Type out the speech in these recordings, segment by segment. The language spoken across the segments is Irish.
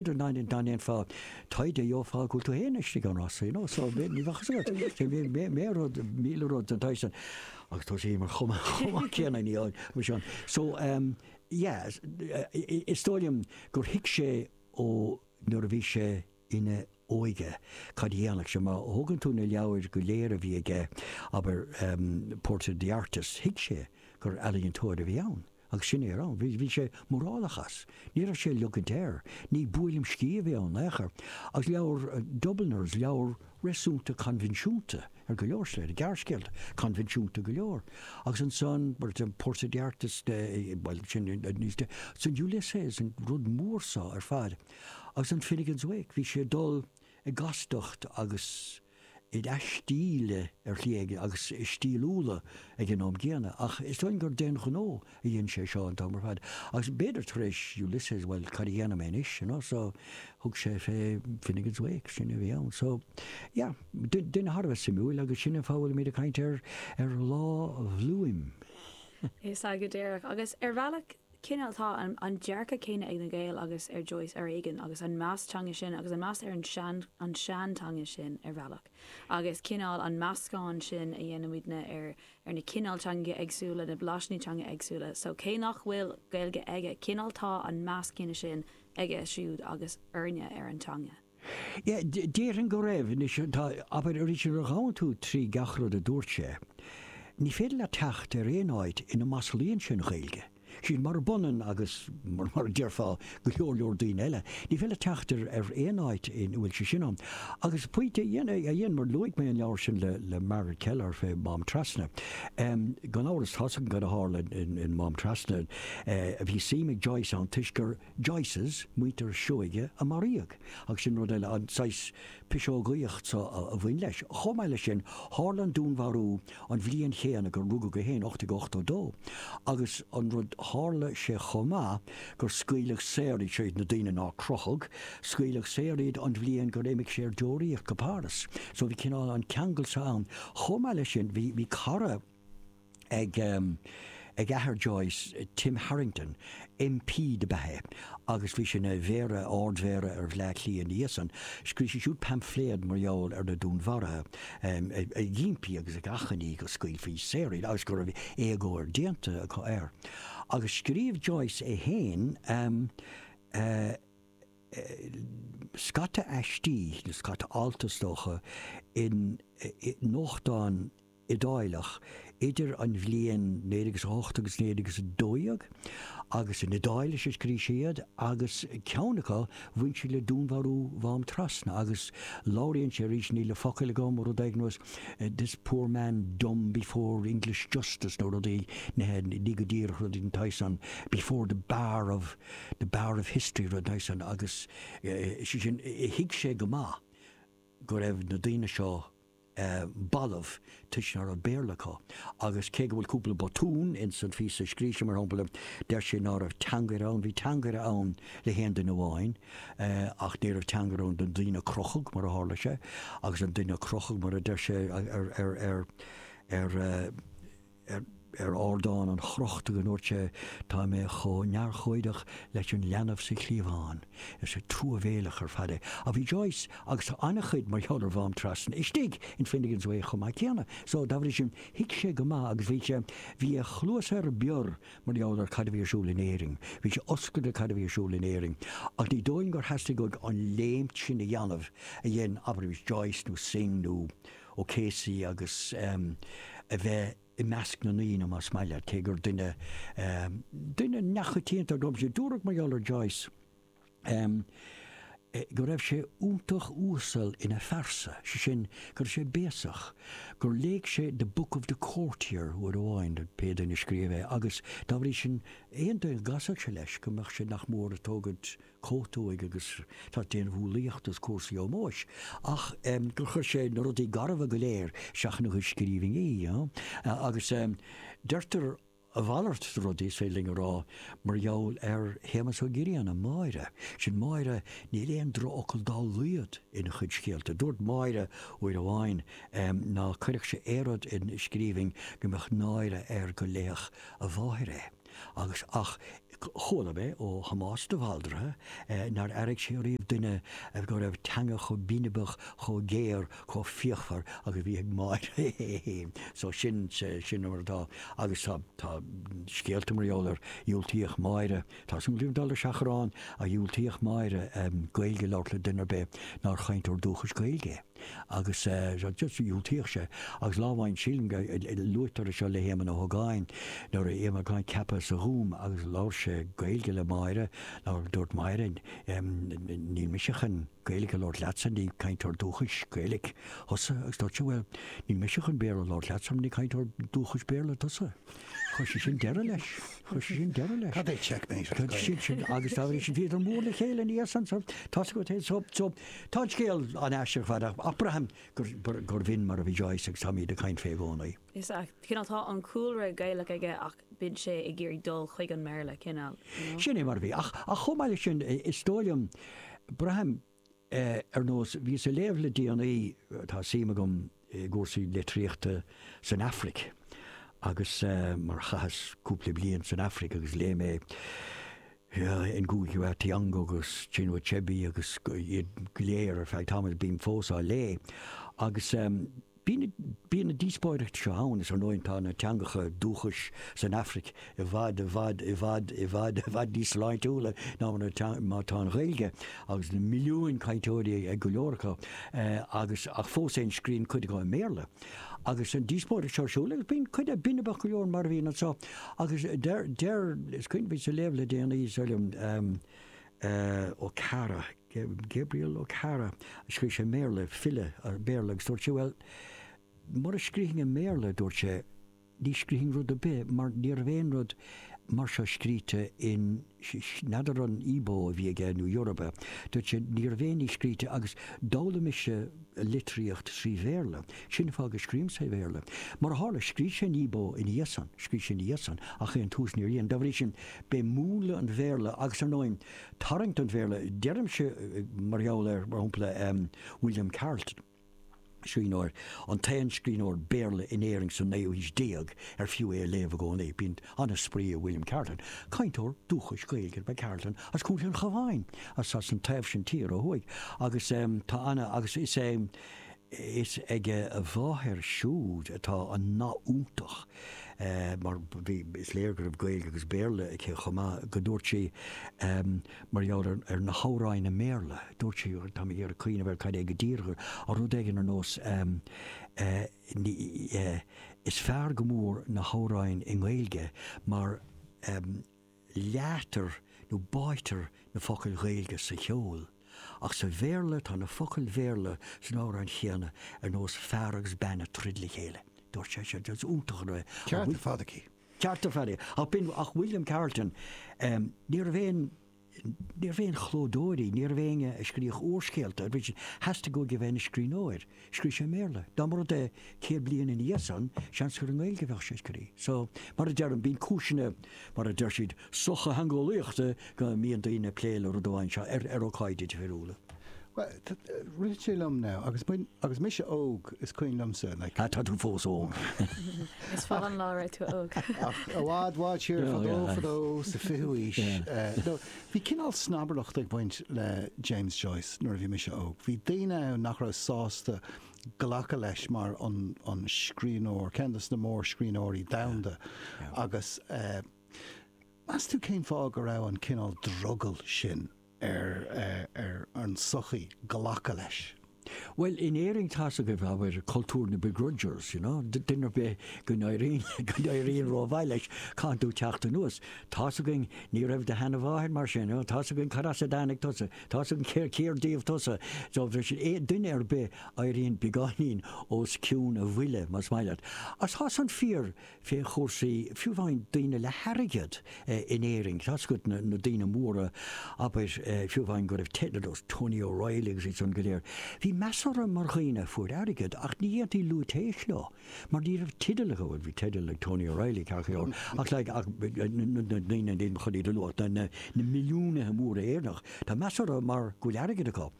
dá ndéanfá taighde gheofá go bhfuil tú féin istigh ann as, you know, so ní bheadh a fhios agat. Bhí mé rud, míle rud den tsaghas san agus tá sé mar chuma chomh céanna ní ann mar sin. So, em, yeah, is dóigh liom gur thuig sé ó nuair a bhí sé ina óige cad a dhéanfadh sé. Má thógann tú na leabhair go léir a bhí aige, abair, em, Portrait of the Artist, thuig sé gur ealaíontóir a bhí ann. Agus sin é a raibh ann. Bhí sé mórálach as. Ní raibh sé á ligint air. Ní buaileam sciath a bhí ann in aon chor. Agus leabhar Dubliners, leabhar réasúnta coinbhinsiúnta ar go leor slite, gearrscéalta coinbhinsiúnta go leor. Agus ansan, Portrait of the Artist, bhuel, sin níos de, san Ulysses, an rud mór san ar fad. Agus an Finnegans Wake, bhí sé ag dul i gcastacht agus. i stíl ar shlí éigin agus i stíliúlacht ag an am gcéanna, ach is dóigh gur d'aon ghnó a dhein sé seo an t-am ar fad, agus b'fhéidir tar éis Ulysses, bhuel, cad a dhéanfaidh mé anois, you know, so thug sé fé Finnegans Wake, sin a bhí ann. So, yeah, duine thar a bheith suimiúil agus sin an fáth a bhfuilimid ag caint ar Lá Bhliuim. Is ag go díreach, agus ar bhealach cineál tá an dearcadh céanna ag na Gaeil agus ag Joyce ar éigean agus an meas teanga sin agus an meas ar an seanteanga sin ar bhealach agus cineál an meascán sin a dhéanann muidne ar na cineál teangacha éagsúla na blaisíní teanga éagsúla so cé nach bhfuil Gaeilge aige cineál tá an meas céanna sin aige siúd agus againne ar an teanga. Déarfainn go raibh. Anois, tá, abair, arís nuair a ghabhann tú trí gach rud a dúirt sé, ní féidir leat teacht ar aon áit ina maslaíonn sé an Ghaeilge. Sin murab ionann agus, mar a déarfá, go leor leor daoine eile. Ní féidir leat teacht ar aon áit ina bhfuil sé sin ann. Agus pointe amháin, mar luaigh mé an leabhar sin le Margaret Kelleher fé Mhám Trasna. Gan amhras, tá's againn cad a tharla in Mám Trasna. Bhí suim ag Joyce ann toisc gur. Joyces, muintir Seoighe, a maraíodh, agus sin rud eile, an saghas piseogaíocht so a bhain leis. Chomh maith leis sin, tharla an dúnmharú an bhliain chéanna gur rugadh é féin, 1882, agus an rud, tharla sé chomh maith gur scaoileadh saor iad siúd, na daoine nár crochadh, scaoileadh saor iad an bhliain gur imigh sé ar deoraíocht go Páras. So bhí cineál an ceangal so ann. Chomh maith leis sin, bhí, bhí cara. ag athair Joyce, Tim Harrington, MP dob ea é agus bhí sé ina Mhéara, Ard-Mhéara ar Bhleá Cliath ina dhiaidh san. Scríobh sé siúd paimfléad mar gheall ar na dúnmharuithe ag impí agus ag achainí go scaoilfí saor iad agus go raibh éagóir déanta acu air. Agus scríobh Joyce é féin scata aistí nó scata alt is dócha i nuachtáin, Iodálach idir an bhliain 1908 agus 1912 agus in Iodáilis a scrígh sé iad agus ceann acu bhain sé le dúnmharú Mhám Trasna agus labhraíonn sé arís, níl na focail agam, rud éigin was this poor man dumb before English justice nó rudaí ní go díreach rud éigin tagann sin before the bar of the bar of history rud den tsaghas san agus sé sin thuig sé go maith go raibh na daoine seo balbh toisc ná raibh Béarla acu agus cé go bhfuil cúpla botún ins an phíosa a scrígh sé mar shampla deir sé ná raibh teangaire ann, bhí teangaire ann le haon duine amháin ach ní raibh teangaire ann don duine a crochadh mar a tharla sé agus don duine a crochadh mar a deir sé ar ar ardán an chrochta go ndúirt sé, Tá mé chomh neamhurchóideach leis an leanbh sa chliabhán. Is truamhéileach ar fad é. Ach bhí Joyce agus an-chuid mar gheall ar Mhám Trasna istigh in Finnegans Wake chomh maith céanna, so dá bhrí sin thuig sé go maith agus bhí sé, bhí a chluasa ar bior mar gheall ar cad a bhí ar siúl in Éirinn. Bhí sé oscailte cad a bhí ar siúl in Éirinn. Ach ní dóigh liom gur theastaigh uaidh an léimt sin a dhéanamh a dhein abair Yeats nó Synge nó. O'Casey agus a bheith i measc na ndaoine, más maith leat, cé gur duine, duine neamhchoitianta ab ea é. Dúradh mar gheall ar Joyce go raibh sé iontach uasal ina phearsa, sé sin, go raibh sé béasach, gur léigh sé The Book of the Courtier uair amháin, pé duine a scríobh é, agus dá bhrí sin aon duine go gcasfadh sé leis go mbeadh sé nach mór ag tógaint a chóta de agus ag déanamh umhlaíochta is ag cur in iúl ómóis ach gur chuir sé na rudaí garbha go léir isteach ina chuid scríbhinní you know agus deirtear a mhalairt de rudaí, is féidir linn a rá, mar gheall ar Shéamus Ó Grianna, Máire. Sin Máire, níl aon drochfhocal dá laghad ina chuid scéalta. Dúirt Máire uair amháin ná cuirfeadh sé aon rud in scríbhinn go mbeadh náire air go léifeadh a mháthair é. agus ach chuala mé ó Thomás de Bhaldraithe nár airigh sé riamh duine go raibh teanga chomh binibeach, chomh géar, chomh fíochmhar agus a bhí ag Máire é féin. So sin, sin mar atá agus tá, tá scéalta mar gheall ar, dhiúltaíodh Máire, táimse anois ag dul ar seachrán, a dhiúltaíodh Máire Gaeilge a labhairt le duine ar bith nár chainteoir dúchais Gaeilge é. agus dhiúltaíodh sé agus lá amháin sílim go luaitear é seo le hÉamonn Ó hÓgáin nuair a bhí Éamonn Ó hÓgáin ceaptha sa Ghúm agus labhair sé Gaeilge le Máire agus dúirt Máire 'níl mise chun Gaeilic a labhairt leatsa, ní cainteoir dúchais Gaeilic tusa' agus dúirt sé 'bhuel níl mise chun Béarla a labhairt leatsa mar ní cainteoir dúchais Béarla tusa'. Chuir sé sin deireadh leis. Chuir sé sin deireadh leis. Cad é checkmate? Sin sin agus tá sin bhíodar mór le chéile in Iarsensor, tosaigh go taobh so Tá an scéal an-aisteach ar fad ach braithim gurbh in mar a bhí Joyce agus táimíd ag caint fé i gcónaí. Is ea, cineál tá an cúlra Gaelach aige ach bíonn sé ag iarraidh dul chuig an mBéarla, cineál, you know? Sin é mar a bhí. Ach chomh maith le sin, is dóigh liom, braithim ar nós, bhíos a léamh le déanaí, tá suim agam, i gcúrsaí litríochta san Afraic agus mar chaitheas cúpla bliain san Afraic agus léigh mé Ngugi wa Thiong'o agus Chinua Achebe agus iad go léir ar feadh tamaill is bím fós á léamh agus bíonn na díospóireachtaí seo ann is ar ndóigh tá na teangacha dúchais san Afraic i bhfad, i bhfad, i bhfad, i bhfad, i bhfad níos sláintiúla ná mar atá an Ghaeilge agus na milliúin cainteoirí ag go leor acu agus ach fós féin scríonn cuid acu i mBéarla. Agus an díospóireacht seo ar siúl agus bíonn cuid de binbeach go leor mar a bhíonn anseo agus deir, deir, is cuimhin liom a léamh le déanaí seo Okara, Gabriel Okara, a scríobh sé i mBéarla, file Béarla agus dúirt sé bhuel mura scríobhfainn i mBéarla, dúirt sé, Ní scríobhfainn rud ar bith mar ní raibh aon rud mar seo scríte in, n'fheadar an Igbo a bhí aige nó Yoruba, dúirt sé ní raibh aon ní scríte agus d'fhoghlaim mise litríocht trí Bhéarla, sin an fáth go scríobhaim sa Bhéarla. Mar a tharla, scrígh sé in Igbo ina dhiaidh san, scrígh sé ina dhiaidh san ach ón tús níor dhein. Dá bhrí sin b'é múnla an Bhéarla agus ar ndóigh tarraingt an Bhéarla, deirimse mar gheall ar, mar shampla, William Carleton. Scríbhneoir, an t-aon scríbhneoir Béarla in Éirinn sa naoú haois déag ar fiú é a léamh i gcónaí. Bíonn an-spraoi ag William Carleton, cainteoir dúchais Gaeilge ab ea Carleton as Contae an Chabháin, as as an taobh sin tíre ó thuaidh, agus tá ana, agus is é, is ag a mháthair siúd atá an nath iontach, mar bhí, is léir go raibh Gaeilge agus Béarla aici chomh maith, go ndúirt sí, Mar gheall ar na hamhráin i mBéarla, dúirt sí, tá mé ag iarraidh cuimhneamh ar cad é go díreach, ar rud éigin ar nós ehm, eh, is fearr go mór na hamhráin i nGaeilge mar, ehm, leáitear nó báitear na focail Ghaeilge sa cheol, ach sa Bhéarla, tá na focail Bhéarla sna hamhráin chéanna ar nós fear agus bean ag troid le chéile. Dúirt sé, is iontach an rud é. Ceart ar fad aici. ceart ar fad aici. Ach b'in, ach William Carleton, ní raibh aon, ní raibh aon chlódóirí, ní raibh éinne a scríodh úrscéalta, nuair a theastaigh uaidh a bheith ina scríbhneoir, scríobh sé i mBéarla. Dá mba rud é céad bliain ina dhiaidh san, seans gur i nGaeilge a bheadh sé ag scríobh. So, mar a deirim, bíonn cúiseanna, mar a deir siad, sochtheangeolaíochta go mbíonn daoine ag plé le rud amháin seo ar ócáidí difriúla. Bhuel, rith sé liom now, agus agus mise óg, is cuimhin liomsa like. Ah, tá tú fós óg. Is fada an lá raibh tú óg. Ach i bhfad bhfad siar fadó fadó sa fichiú aois. Bhí cinál snobaireacht ag baint le James Joyce nuair a bhí mise óg. Bhí daoine ann nach raibh sásta glacadh leis mar an scríbhneoir, ceann de na mórscríbhneoirí domhanda agus eh, Meas tú cén fáth go raibh an cineál drogall sin ar an sochaí glacadh leis? Bhuel, in Éirinn tá's agaibh, abair, cultúr na begrudgers, you know, duine ar bith go n-éiríonn rómhaith leis caithfidh tú teacht anuas, tá's againn ní raibh do sheanamháthair mar sin, tá's againn cad as a dtáinig tusa, tá's againn cér díobh tusa, so bhí sé, duine ar bith éiríonn beagáinín os cionn a bhuille, más maith leat. Ach tá san fíor, fé chúrsaí, fiú amháin daoine le hairgead in Éirinn, tá's agat, na daoine móra, abair, fiú amháin go raibh teidil dos Tony O'Reilly agus iadsan go léir, bhí meas orthu mar dhaoine a fuair airgead ach ní dhéantaí lúitéis leo mar ní raibh teideal acu, bhuel bhí teideal ag Tony O'Reilly, ceart go leor, ach like ach na daoine níl mé chun iad a lua ach na na milliúnaithe móra Éireannach, tá meas orthu mar go bhfuil airgead acu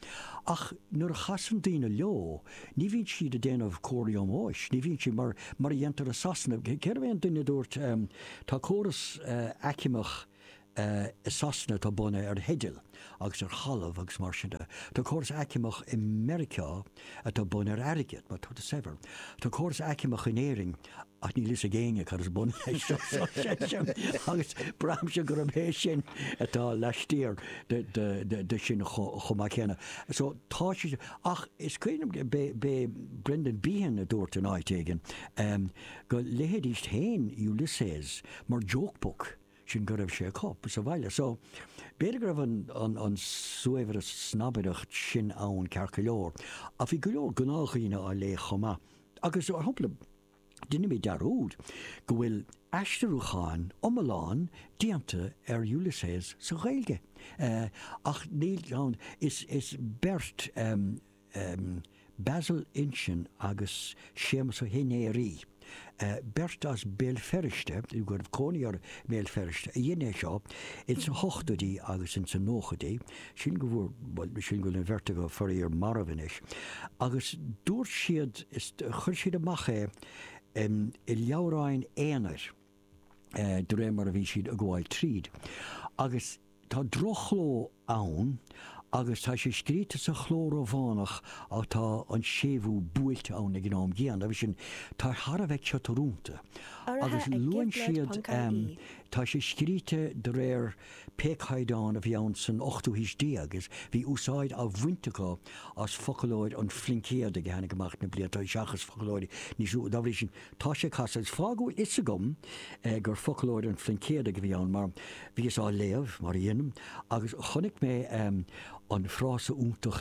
ach nuair a chasann daoine leo, Ní bhíonn siad ag déanamh comharthaí ómóis, ní bhíonn siad mar, mar a dhéantar i Sasana. Cérbh é an duine a dúirt, tá córas aicmeach i Sasana atá bunaithe ar theidil agus ar thalamh agus mar sin de. Tá córas aicmeach i Meiriceá atá bunaithe ar airgead, má tá tú saibhir. Tá córas aicmeach in Éirinn. ach níl fhios ag éinne cad is bun leis seo sin agus braithimse gurb é sin atá laistiar de sin chomh maith céanna. So tá sé sin. Ach is cuimhin liom b'é Brendan Behan a dúirt in áit éigin go léidís féin Ulysses mar joke book sin go raibh sé acu sa bhaile. So b'fhéidir go raibh an snobbery snobaireacht sin ann ceart go leor. Ach bhí go leor gnáthdhaoine á léamh chomh maith Agus ar shampla deinimid dearúd go bhfuil aistriúchán iomlán déanta ar Ulysses sa Ghaeilge, ach níl ann, is beirt, Basil Uilsean agus Séamus Ó hInnéirí, beirt as Béal Feirste, go raibh cónaí orthu i mBéal Feirste, a dhein é seo ins na hochtóidí agus ins na nóchaidí, sin go bhfuair, bhuel, sin go bhfuil an bheirt acu faraor marbh anois. Agus dúirt siad, is, chuir siad amach é em i leabhráin aonair eh de réir mar a bhíonn siad a' gabháil tríd. Agus tá droch-chló ann agus tá sé scríte sa chló Rómhánach ach tá an séimhiú buailte ann ag an am gcéanna agus sin, tá sé thar a bheith ciotrúnta. Agus luann siad, em, tá sé scríte de réir. Pé caighdeán a bhí ann san ochtú haois déag is bhí úsáid á bhaint acu as foclóir an Phluincéadaigh a tháinig amach na bliain, tá's agat, seachas foclóir níos nua. Dá bhrí sin tá sé casta. Is fáth a fhios agam gur foclóir an Phluincéadaigh a bhí ann mar bhíos á léamh, mar a dhéanaim, agus chonaic mé an frása iontach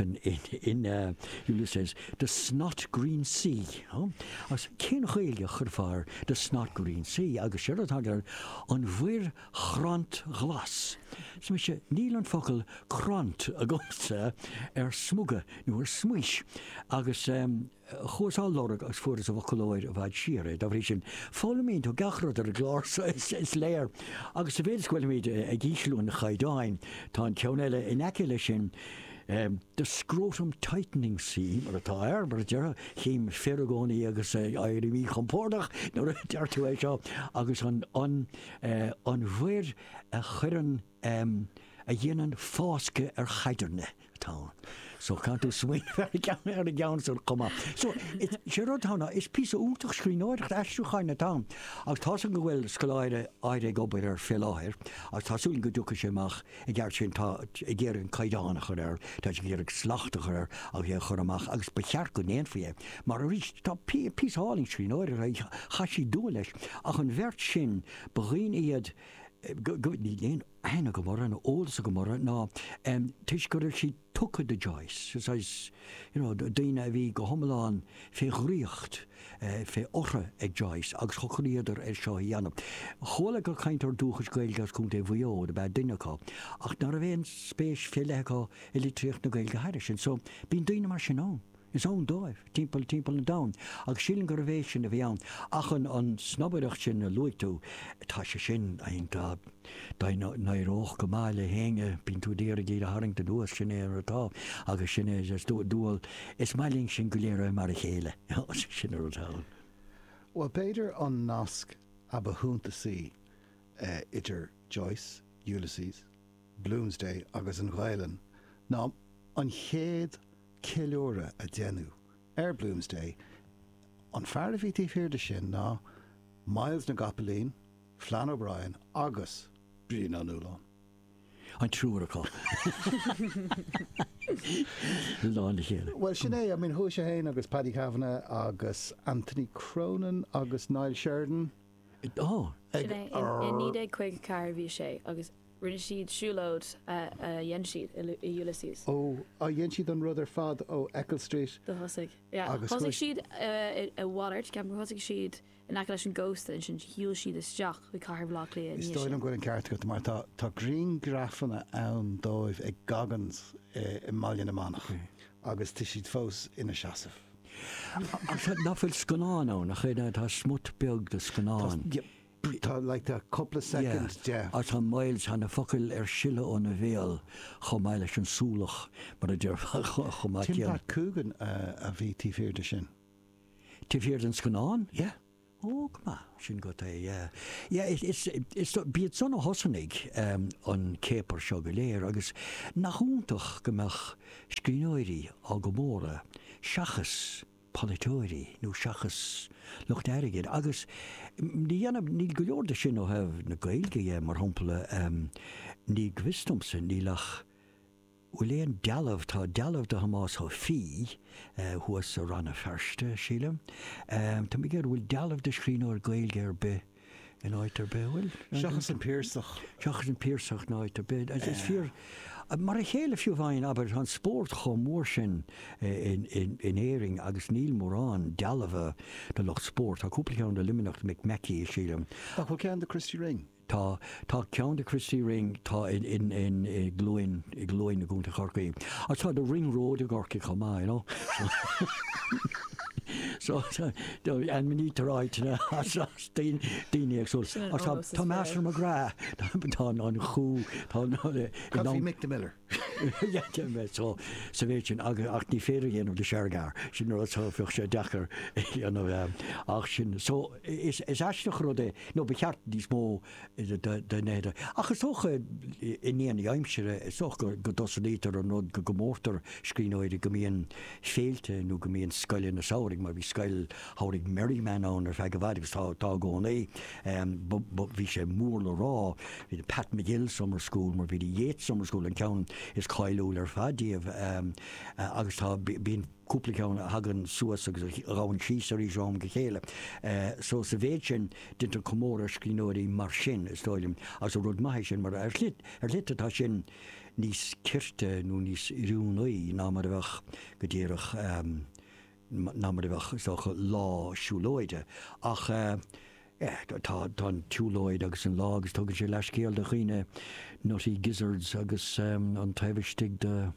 in Ulysses, the snot green sea. Agus cén Ghaelainn a chuirfeá ar the snot green sea? Agus seo rud atá acu, an mhuir chrant ghlas. Arsa mise, níl an focal crant agamsa ar smuga nó ar smaois. Agus chuas á lorg agus fuaireas i bhfoclóir i bhfad siar é. Dá bhrí sin, foghlaimíonn tú gach rud ar an gclár so, is léir. Agus sa mhéid is go bhfuilimid ag ísliú an chaighdeáin, tá an ceann eile in aice leis sin, The scrotum tightening sea, ar atá, ar, mar a déarfá, chím fir i gcónaí agus éirim míchompordach nuair a deir tú é seo, agus an, an mhuir a chuireann, a dhéanann fáscadh ar chaidirne atá ann. So can tú smaoineamh ar an gceann, ar an gceann san chomh maith. So is, sé rud atá ann ná, is píosa iontach scríbhneoireacht, aistriúcháin atá ann. Agus tá súil agam go bhfuil scoláire éigin ag obair air fé láthair agus tá súil agam go dtiocfaidh sé amach I gceart sin, tá ag iarraidh an caighdeán a chur air, tá sé ag iarraidh slacht a chur air agus é a chur amach agus ba cheart go ndéanfaí é mar arís tá píosa álainn scríbhneoireachta, chaith siad dua leis ach an bheirt sin ba dhaoine iad go, níl aon aithne agam orthu nó eolas agam orthu, ná toisc go raibh siad. tugtha do Joyce, is, is, you know, daoine a bhí go hiomlán fé dhraíocht, fé ortha ag Joyce agus shocraíodar ar seo a dhéanamh. Chuala gur cainteoir dúchais Gaeilge as Contae Mhaigh Eo ab ea duine acu, ach ná raibh aon spéis fé leith acu i litríocht na Gaeilge thairis sin. So, bíonn daoine mar sin ann. Is ann dóibh, timpeall, timpeall an domhain, agus sílim gurbh é sin a bhí ann. Ach an snobaireacht sin a luaigh tú, tá sé sin iontach. Dá n-éireodh go maith le héinne, bíonn tú ag iarraidh iad a tharraingt anuas, sin é mar atá, agus sin é is dual, is maith linn sinn go léir a bheith mar a chéile, sin an rud atá ann. Bhuel, b'fhéidir an nasc a ba shuntasaí idir Joyce, Ulysses, Bloomsday agus an Ghaelainn ná an chéad ceiliúradh a deineadh ar Bloomsday, an fear a bhí taobh thiar de sin ná Myles na gCopaleen, Flann O'Brien agus Brian Ó Nualláin. an triúr acu i lán a chéile. Bhuel, sin é, I mean chuaigh sé féin agus Paddy Kavanagh agus Anthony Cronin agus Niall Sheridan Ó! Sin é, i 1954 a bhí sé agus Rinne siad siúlóid. a dhein siad i Ulysses. Ó, a dhein siad an rud ar fad ó Eccles Street. Do thosaigh. agus chuaigh. Thosaigh siad i nDún Laoghaire, ceapaim gur thosaigh siad in aice leis an gcósta, ansin shiúil siad isteach chuig cathair Bhaile Átha Cliath i ndiaidh sin. Is dóigh liom go bhfuil an ceart agat, mar tá tá griangrafanna ann díobh ag Goggins i mBaile na Manach agus tá siad fós ina seasamh. Nach bhfuil scannán ann, nach é? Tá smut beag de scannán. Ach tá, bhuel, tá na focail ar sileadh óna bhéal chomh maith leis an súlach, mar a déarfá, chomh maith céanna. Tim Pat Coogan a bhí taobh thiar de sin. Taobh thiar den scannán? Yeah. Ó, go maith, sin go hé, yeah. Yeah, is, is, b'iad son a thosnaigh an céapar seo go léir agus nach iontach go mbeadh scríbhneoirí á gcomóradh seachas. polaiteoirí nó seachas lucht airgid agus ní dhéanann, níl go leor de sin ó thaobh na Gaeilge de, mar shampla, ní go bhfios domsa, níl ach, bhfuil aon dealbh, tá dealbh de Thomás Ó Fiaich thuas i Rann na Feirste, sílim, tá mé ag iarraidh, bhfuil dealbh de scríbhneoir Gaeilge ar bith, in áit ar bith, bhuel. Seachas an Piarsach. Seachas an Piarsach in áit ar bith. Is fíor, mar a chéile fiú amháin, abair, tá an spórt chomh mór sin in Éirinn agus níl mórán dealbha de lucht spóirt, tá cúpla ceann i Luimneach, Mick Mackey, sílim. Ach bhfuil ceann de Christy Ring? Tá. Tá ceann de Christy Ring, tá i gCluain i gCluain i gContae Chorcaí, agus tá The Ring Road i gCorcaigh chomh maith, you know. So so ainmnítear áiteanna as as daoine daoine éagsúla. Agus tá tá Master McGrath, tá an an chú tá an. Caithfidh Mick the Miller. Dhein mé seo sa mhéid sin agus ach ní féidir a dhéanamh le Shergar, sin rud so bheadh sé deacair a dhéanamh é ach sin. So is is aisteach an rud é nó ba cheart níos mó de na ach is dócha i ndiaidh na haimsire is dócha go go dtosnaítear an rud go gcomórtar scríbhneoirí go mbíonn féilte nó go mbíonn scoileanna samhraidh mar bhí scoil Tháinig Merriman ann ar feadh i bhfad agus tá i gcónaí. Bhí sé mór le rá. Bhí an Pat McGill Summer School mar bhí an Yeats Summer School an ceann is cáiliúla ar fad díobh agus tá bíonn cúpla ceann a thagann suas agus a ghabhann síos arís ó am go chéile. So sa mhéid sin déantar comóradh ar scríbhneoirí mar sin is dóigh liom agus rud maith é sin mar ar shlite atá sin níos cirte nó níos oiriúnaí ná mar a bheadh go díreach ná mar a bheadh, is dócha, lá siúlóide. Ach eh tá an tsiúlóid agus an lá agus tugann sé leathscéal do dhaoine nutty gizzards agus an taobh istigh de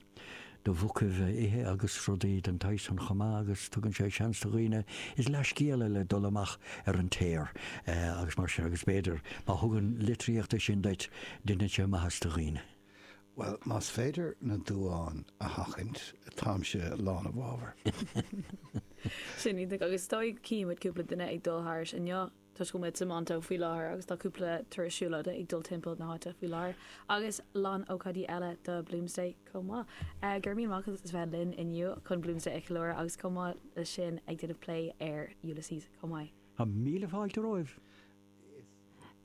de mhuca a ithe agus rudaí den tsaghas san chomh maith agus tugann sé seans do dhaoine, is leathscéal é le dul amach ar an aer agus mar sin agus b'fhéidir má thugann litríocht é sin duit, deineann sé maitheas do dhaoine. Bhuel, más féidir na duáin a sheachaint, táimse lán i bhfabhar. Sin é agus is dóigh go gcífidh muid cúpla duine ag dul thairis inniu toisc go bhfuil muid i Temple Bar faoi láthair agus tá cúpla turas siúlóide ag dul timpeall na háite faoi láthair agus lán ócáidí eile do Bloomsday chomh maith. Go raibh míle maith agat as a bheith linn inniu chun Bloomsday a cheiliúradh agus chomh maith leis sin ag déanamh plé ar Ulysses chomh maith. Míle fáilte romhat.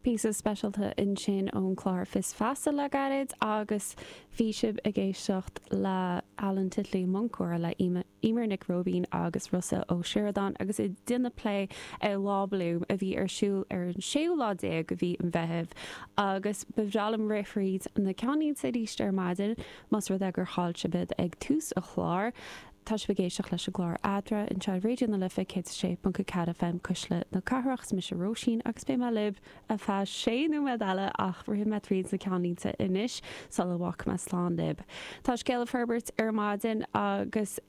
píosa speisialta ansin ón chlár Fios Feasa le gairid agus bhí sibh ag éisteacht le Alan Titley, Muncóir le Emer Nic Róibín agus Rossa Ó Sioradáin agus iad ag déanamh plé ar Lá Bloom a bhí ar siúl ar an 16ú lá de mhí an Mheithimh agus ba bhreá liom rith thríd na ceannlínte arís ar maidin más rud é gur chaill sibh iad ag tús an chláir. Tá sibh ag éisteacht leis an gclár Adhmhaidin ar Raidio na Life 106.4 FM Cuisle na Cathrach. Is mise Róisín agus beidh mé libh ar feadh sé nóiméad eile ach rithfidh mé tríd na ceannlínte anois sula bhfágfaidh mé slán libh. Tá scéal ag forbairt ar maidin agus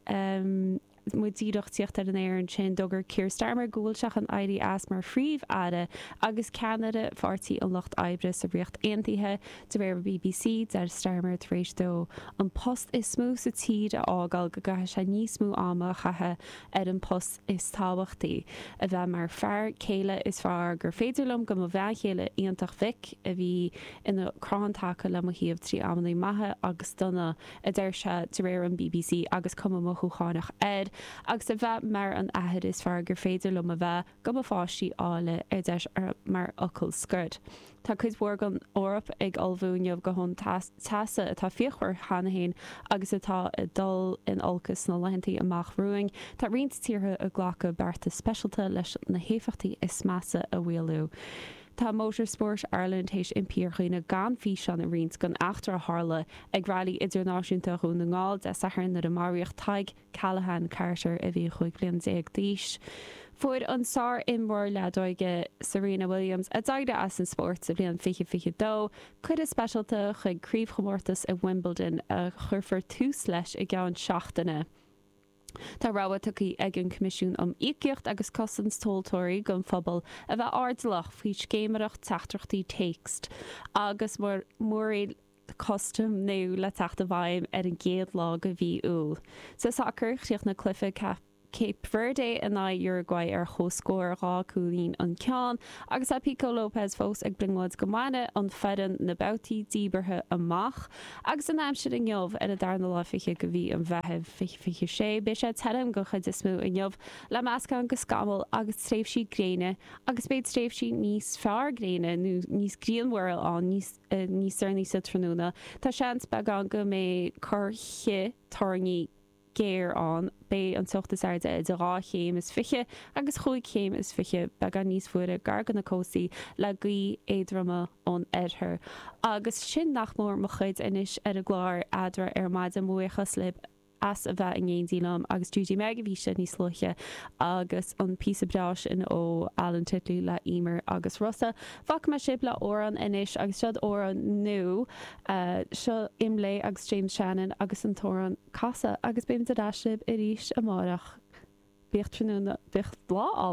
muid díreach ag tíocht ar an aer ansin d'fhógair Keir Starmer go bhfuil sé chun éirí as mar phríomh-aire agus ceannaire Pháirtí an Lucht Oibre sa Ríocht Aontaithe. De réir an bbc, deir Starmer tar éis dó an post is mó sa tír a fhágáil go gcaithfidh sé níos mó ama a chaitheamh ar an bpost is tábhachtaí, a bheith mar fear céile is fearr gur féidir liom do mo bhean chéile iontach Vic, a bhí ina crann taca le mo thaobh trí amannaí maithe agus dona, a deir sé, de réir an bbc, agus cuma mhothúchánach air, agus a bheith mar an athair is fearr gur féidir liom a bheith do mo pháistí áille, a deir sé mar fhocal scoir. Tá cuid mhór den Eoraip ag ullmhú inniu do thonn teasa atá fíochmhar cheana féin agus atá ag dul in olcas sna laethanta amach romhainn. Tá roinnt tíortha ag glacadh bearta speisalta leis na héifeachtaí is measa a mhaolú. Tá Motorsport Ireland théis impí ar dhaoine gan físeán a roinnt den eachtra a tharla ag Railí Idirnáisiúnta Dhún na nGall Dé Sathairn nuair a maraíodh Tadhg Callahan Carter a bhí 15 bliain d'aois. Fuair an sár-imreoir leadóige Serena Williams, a d'éirigh as an spórt sa bhliain 2022, cuireadh speisialta chuig craobhchomórtas i Wimbledon a chuirfear tús leis i gceann seachtaine. Tá rabhadh tugtha ag an Coimisiún um Íocaíocht agus Cosaint Tomhaltóirí don phobal a bheith airdeallach faoi scéiméireacht teachtaireachtaí téacs agus muirir custaim nua le teacht i bhfeidhm ar an gcéad lá de mhí Iúil. Sa tsacar, chríochnaigh cluiche Cape Verde in aghaidh Uruguay ar chomhscór dhá cúilín an ceann agus tá Pico Lopes fós ag brionglóid go mbainfidh an foireann na babhtaí díbeartha amach agus an aimsir inniu ar an darna lá fichead de mhí an Mheithimh, 2026, beidh sé tirim den chuid is mó inniu le meascán de scamaill agus tréimhsí gréine agus beidh tréimhsí níos fearr gréine nó níos grianmhaire ann níos níos deireanaí sa tráthnóna. Tá seans beagán go mbeidh corrchith toirní géar ann. Beidh an teocht is airde idir 2 chéim is 20 agus 5 chéim is 20, beagán níos fuaire gar do na cóstaí, le gaoithe éadroma ón oirthear. Agus sin nach mór mo chuid anois ar an gclár eadra ar maidin. Buíochas libh! as a bheith in éindí liom agus Judy Meg a bhí anseo níos luaithe agus an píosa breá sin ó Alan Titley le Emer agus Rossa. Fágfaidh mé sibh le amhrán anois agus seod amhrán nua, seo Imlé agus James Shannon agus an t-amhrán Casadh agus beimid ar ais libh arís amárach. Bíodh tráthnóna, bíodh lá álainn.